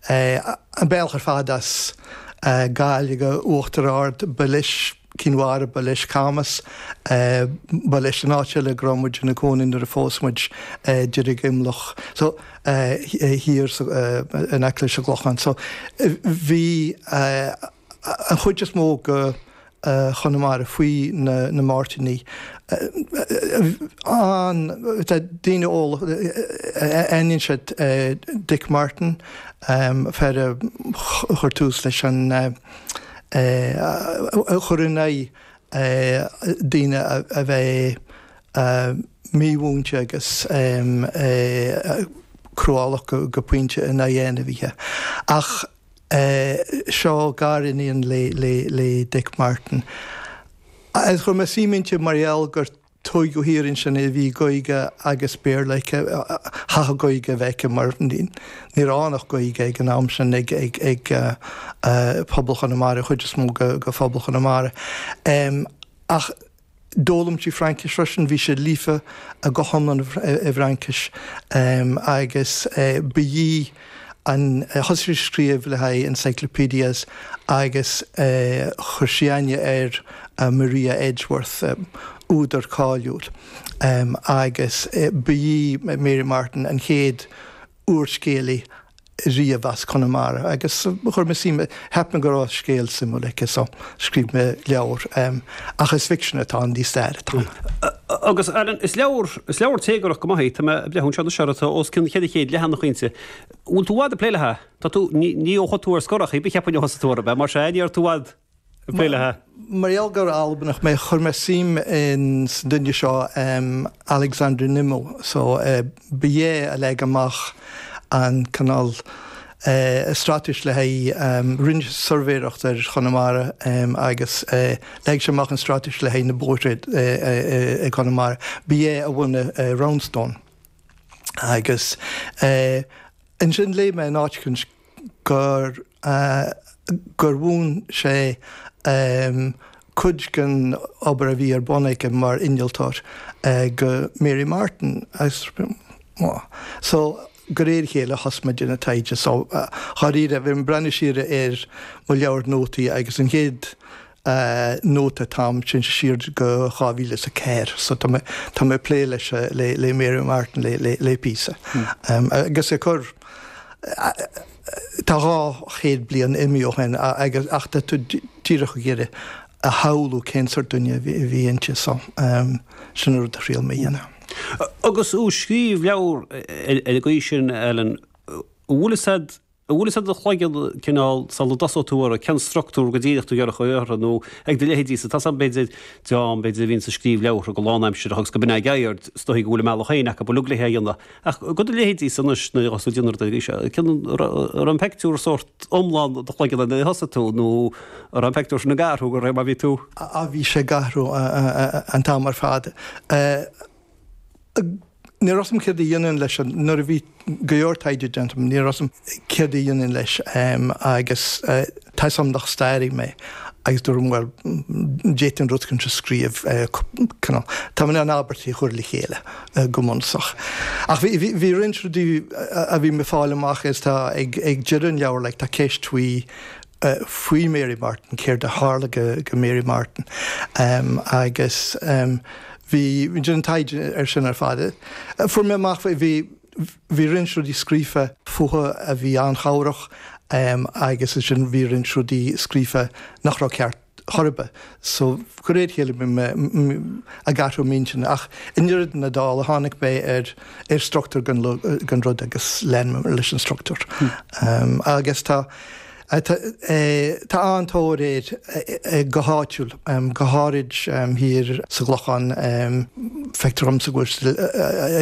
é an bealach ar fad as Gaeilge Uachtar Ard, ba leis Cinn Mhara, ba leis Camas, ba leis an áit eile a raibh muid ina cónaí nuair a phós muid, Deirgimleach, so thiar in aice leis an gClochán. So bhí. an chuid is mó go Chonamara faoi na Máirtíní, tá daoine eolach, aithníonn siad Dick Martin, fear a chuir tús leis an, a chuir in aghaidh daoine a bheith mímhúinte agus cruálach go pointe in aghaidh ainmhithe ach, seo gariníon le Dick Martin. Chuir mé suim inti mar gheall gur tóigeadh thiar ansin í, bhí Gaeilge agus Béarla aici, chaithfeadh Gaeilge a bheith aici mar ní raibh ann ach Gaeilge ag an am sin ag pobal Chonamara, an chuid is mó go phobal Chonamara. Ach. D'fhoghlaim sí Fraincis freisin, bhí sí líofa go hiomlán i bhFraincis agus ba í an, thosaigh sí ag scríobh le haghaidh encyclopaedias agus chuir sí aithne ar Maria Edgeworth, údar cáiliúil, agus ba í Mary Martin an chéad. úrscéalaí riamh as Conamara agus chuir mé suim, cheap mé go raibh scéal suimiúil aici so scríobh mé leabhar. Ach is ficsean atá ann, ní stair atá ann. Agus Alan, is leabhar, is leabhar téagartha go maith é, tá mé ag breathnú anseo anois air, tá os cionn cheithre chéad leathanach ann. An bhfuil tú i bhfad ag plé le, tá tú, ní, ní, ó thug tú ar scor a chí, cheapainn ó thosaigh tú ar, mar sea, ní raibh tú i bhfad. Gaelaithe. Mar gheall gur Albanach mé, chuir mé suim in san duine seo Alexander Nimmo, so ba é a leag amach an cineál straitéis le haghaidh, rinne sé suirbhéireacht ar Chonamara agus leag sé amach an straitéis le haghaidh na bóithre i gConamara. Ba é a bhunaigh Roundstone. Agus ansin léigh mé in áit éicint gur. a gur mhúin sé cuid gon obair a bhí ar bun aige mar innealtóir go Mary Martin agus so go réir a chéile a thosaigh mé ag déanamh taighde so dháiríre bhí mé ag breathnú siar ar mo leabhair nótaí agus an chéad a nóta atá a'm, sin siar go 2004 so tá mé tá mé ag plé leis le Mary Martin le píosa agus ag cur tá 200 bliain imithe ó shin agus ach tá tú díreach ag iarraidh a shamhlú cén sórt duine a bhí inti so sin an rud a thriail mé a dhéanamh. Agus tú ag scríobh leabhar ar an gcaoi sin Alan, an bhfuil fhios a'd An bhfuil fhios ag do chloigeann cineál sula dtosóidh tú orthu cén struchtúr go díreach atá tú ag iarraidh orthu nó ag do leithéidí sa tosach, b'fhéidir, dream b'fhéidir a bhíonns ag scríobh leabhartha go lánaimsireach agus go minic ag éirí, ar ndóigh go bhfuil a mbealach féin acu uilig le hé a dhéanamh ach do do leithéidse anois nuair a thosaigh tú ar do thaighde an raibh an pictiúr sórt iomlán i do chloigeann nuair a thosaigh tú nó an raibh an pictiúr sin ag athrú de réir mar a bhí tú á, bhí sé ag athrú an t-am ar fad. Ní raibh a fhios a'm céard a dhéanfainn leis sin, nuair a bhí go leor taighde déanta agam, ní raibh a fhios a'm céard a dhéanfainn leis agus tá 'fhios a'm nach stairí mé agus dúirt mé bhuel, d'fhéadfainn an rud sin a scríobh, cineál, tá mé in ann abairtí a chur le chéile go bunúsach. Ach bhí roinnt rudaí a bhí mé ag fáil amach is tá ag deireadh an leabhair, like, tá ceist faoi, faoi Mary Martin, céard a tharla do Mary Martin agus bhí an taighde ar sin ar fad a fuair mé amach faoi, bhí roinnt rudaí scríofa fúithi a bhí an-chabhrach agus ansin bhí roinnt rudaí scríofa nach raibh ceart. chor ar bith. So, de réir a chéile bhí mé ag athrú m'intinne ach i ndeireadh na dála tháinig mé ar struchtúr don rud agus lean mé leis an struchtúr. Agus tá an-tóir air go háitiúil, go háirid thiar sa gClochán. Feictear dhomsa go bhfuil siad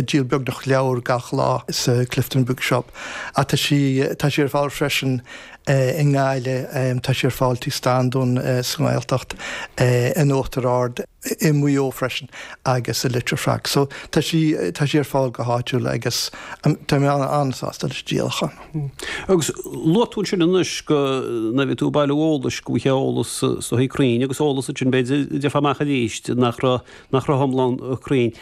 ag díol beagnach leabhar gach lá sa Clifden Bookshop ach tá sí ar fáil freisin i nGaillimh, tá sí ar fáil tigh Standún sa nGaeltacht, in Uachtar Ard, i Maigh Eo freisin agus i Leitir Fraic. So tá sí tá sí ar fáil go háitiúil agus tá mé an-sásta leis an díolachán. Agus luaigh tú ansin anois go raibh tú ag bailiú eolais go bhfuil eolas sách cruinn agus eolas ansin b'fhéidir amach arís nach raibh nach raibh iomlán cruinn.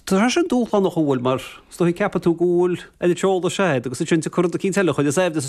Tá sin dúshlánach an bhfuil, mar scaití ceapann tú go bhfuil an t-eolas sin agus ansin tú cur do cinn teile chuid is aimh de sa